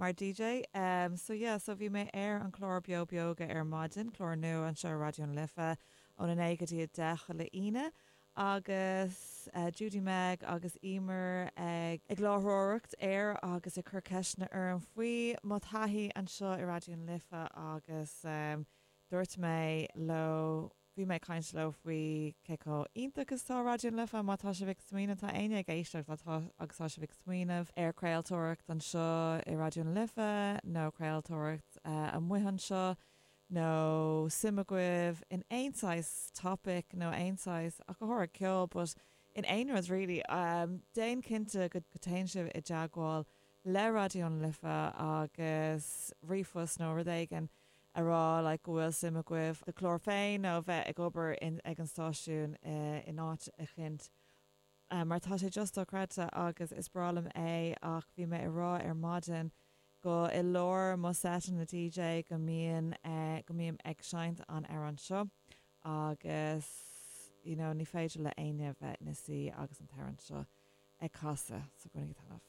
Mar DJ, em, so yeah, so bhí mé ar an chlár Beo Beoga ar maidin, clár nua anseo ar Raidió na Life, óna naoi go dtí a deich chuile Aoine, agus, eh, Judy-Meg agus Eimear ag, ag láithreoireacht air agus ag cur ceisteanna orm faoi mo thaithí anseo i Raidió na Life agus, em, dúirt mé leo, Bhí mé ag caint leo faoi cé chomh iontach is atá Raidió na Life, má tá sibh ag smaoineamh, tá éinne ag éisteacht agus tá sibh ag smaoineamh ar chraoltóireacht anseo i Raidió na Life nó craoltóireacht amuigh anseo, nó suim agaibh in aon saghas topic nó aon saghas, ach go háirid ceol, but in aon rud really, déan cinnte go téann sibh i dteagmháil le Raidió na Life agus ríomhphost nó rud éigin. a rá like go bhfuil suim agaibh do chlár féin nó bheith ag obair in ag an stáisiún in áit eicint mar tá sé just dochreidte agus is breá liom é ach bhí mé a rá ar maidin go i lár mo sheiteanna DJ go mbíonn go mbím ag seinnt an amhrán seo agus you know ní féidir le éinne bheith ina suí agus an t-amhrán seo ag casadh so bainigí taitneamh.